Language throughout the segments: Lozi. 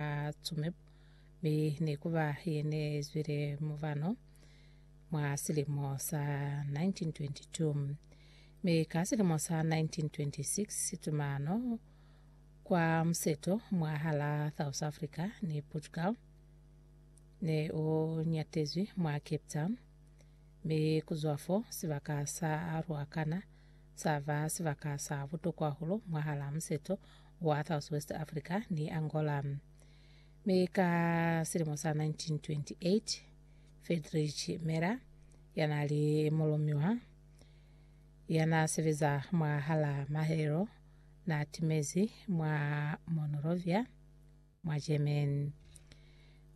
a Tsumeb, mi ne ku ba ye ne zwile mubano mwa silimo sa 1922. Mi ka silimo sa 1926 tumano kwa museto mwahala South Africa ni Portugal ne u nyatezwi mwa Cape Town, mi ku zwa fo sibaka sa Ruacana sa ba sibaka sa butokwa hahulu mwahalaa museto wa South West Africa ni Angola. Mi ka silimo sa 1928, Friedrich Merr, ya na li mulumiwa ya na sebeza mwahalaa mahelelo, na timezi mwa Monrovia, mwa German.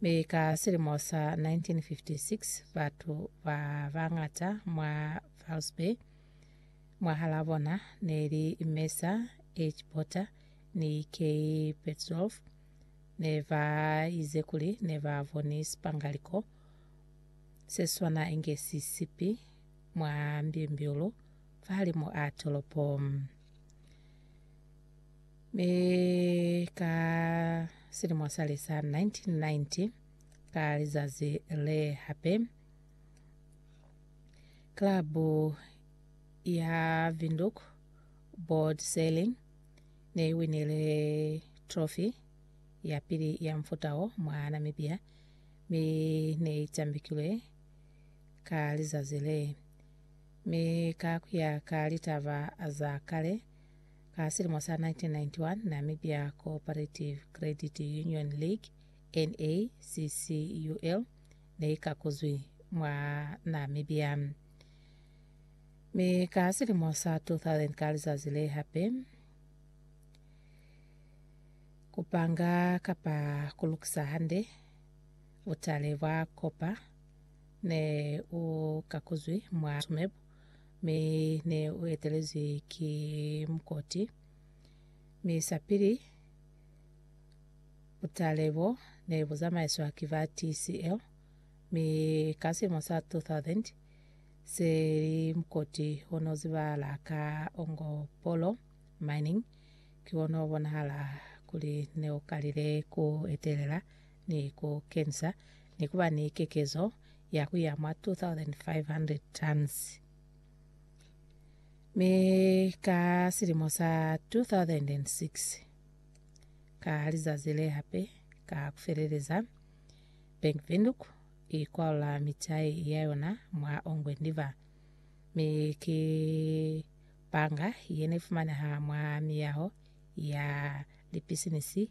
Mi ka silimo sa 1956 batu ba bangata mwa Valsby mwahala bona neli Mesa H. Porter ni K. Petzolf ne ba ize kuli ne ba boni sipangaliko se swana inge si sipi mwa mbimbiulu fahalimu a tolopo. Mi ka silimo sali sa 1990, ka lizazi le hape, klabu ya Windhoek Board Sailing ne i winile trophy ya pili ya mufuta wo mwa Namibia, mi ne i tambikilwe ka lizazi le. Mi ka kuya ka litaba za kale, Ka silimo sa 1991, Namibia Cooperative Credit Union League, NACCUL, neikakuzwi mwa Namibia. Mi ka silimo sa 2000 ka lizazi le hape, kupanga kapa kulukisa hande butale bwa kopa ne ukakuzwi mwa Tsumeb. mi ne u etelezwi ki mukoti, mi sapili butale bo ne bu zamaiswa ki ba TCL, mi ka silimo sa 2000 se li mukoti o no zibahala ka Ongopolo Mining, ki ona o bonahala kuli ne u kalile ku etelela ni ku kenisa ni ku ba ni kekezo ya ku ya mwa 2,500 tons. Mi ka silimo sa 2006, ka lizazi le hape, ka ku feleleza, Bank Windhoek i kwalula mitai ya yona mwa Ongwen River, mi ki banga ye ne fumaneha mwa miyaho ya lipisinisi